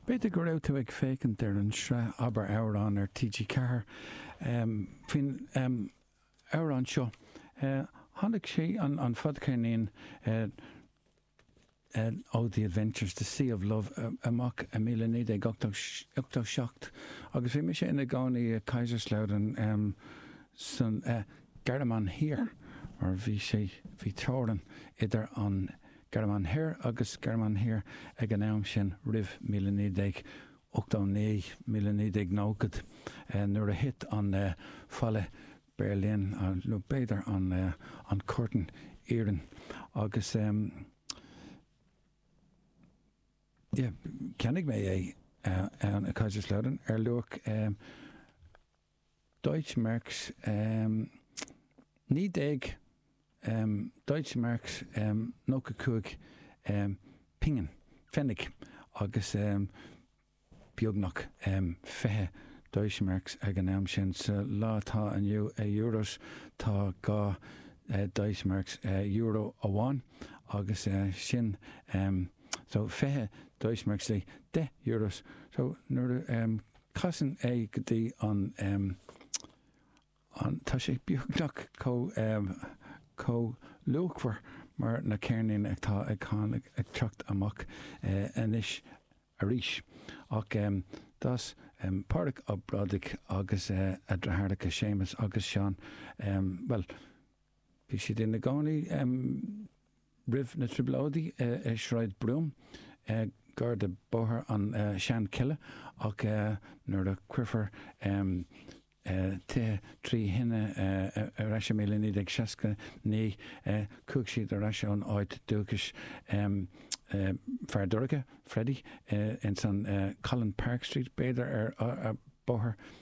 B'fhéidir go raibh tú ag féachaint ar an sraith Abair Amhrán ar TG4 faoin amhrán seo. Tháinig sí, an fadcheirnín ó The Adventures, the Sea of Love, amach i míle naoi déag ochtó seacht agus bhí mise ina gcónaí i Kaiserslautern sa Ghearmáin Thiar mar bhí sé, bhí teorainn idir an. Gearmáin Thoir agus Gearmáin Thiar ag an am sin, roimh míle naoi déag ochtó naoi míle naoi déag nóchad, nuair a thit an Falla Bheirlín, nó b'fhéidir an Curtain Iarainn, agus cheannaigh mé é in Kaiserslautern ar luach. Deutsche Marks, em, 19, em, Deutsche Marks, em, 95, em, pingin, pfennig, agus, em, beagnach, em, 20 Deutsche Marks ag an am sin. Sa lá atá inniu, euros, tá dhá Deutsche Marks, euro amháin, agus sin, em, so, 20 Deutsche Marks, 10 euros. So, nuair a, em, Casann é go dtí an an. Tá sé beagnach chomh chomh luachmhar mar na ceirníní atá ag teacht amach anois arís. Ach d'fhás Pádraig Ó Brádaigh agus a dhreatháireacha Séamus agus Seán, bhuel, bhí siad ina gcónaí, Roimh na trioblóidí i Sráid Bombay, gar do Bóthar na Seanchille, ach nuair a cuireadh tithe trí thine ar ais i míle naoi déag seasca naoi, chuaigh siad ar ais ón áit dúchais Fear Dúrga, Freddy, ins an Colin Park Street, b'fhéidir, ar Bóthar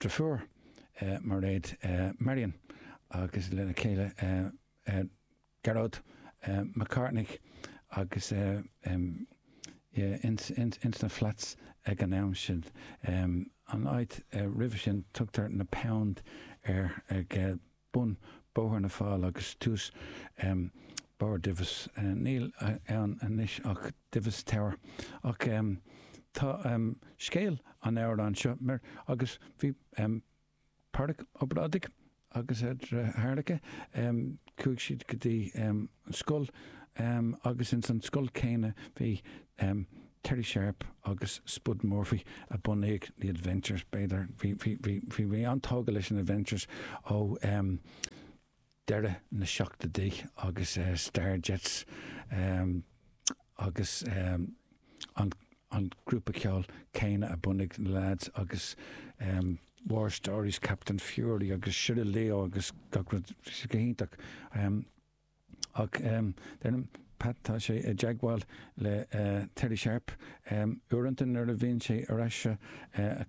Dheirfiúr, Mairéad, Marion, agus lena chéile Gearóid Mac Cárthaigh agus í ins na flats ag an am sin. An áit roimhe sin tugtar na Pound air ag bun Bóthar na bhFál agus tús barr Divis. Níl ann anois ach Divis Tower. Ach tá scéal an amhráin seo mar agus bhí Pádraig Ó Brádaigh agus a dheartháireacha, chuaigh siad go dtí. an scoil agus ins an scoil céanna bhí Terry Sharpe agus Spud Murphy a bhunaigh The Adventures b'fhéidir. Bhí mé an-tógtha leis an Adventures ó deireadh na seachtóidí agus Starjets agus an grúpa ceoil céanna a bhunaigh na lads agus War Stories, Captain Fury agus Shiraleo agus gach rud go hiontach. Ach deirim, Pat, tá sé i dteagmháil le Terry Sharpe. Uaireanta nuair a bhíonn sé ar ais i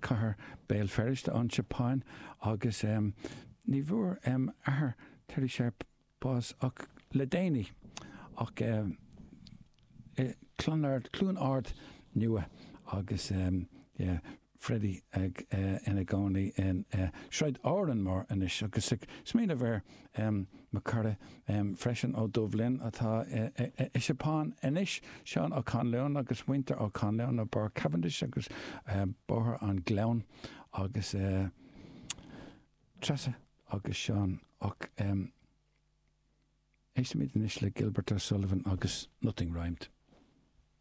cathair Béal Feirste ón tSeapáin agus ní bhfuair athair Terry Sharpe bás ach le déanaí ach i Clonard, Cluain Ard Nua agus yeah. Freddie ag ina gcónaí i Sráid Árainn Mhór anois agus ag smaoineamh ar mo chara freisin ó Dubh Linn atá i Seapáin anois, Seán Ó Conluain agus muintir Ó Conluain ó Bharr Cavendish agus Bóthar an Gleann agus Treasa agus Seán ach éistimid anois le Gilbert O'Sullivan agus Nothing Rhymed.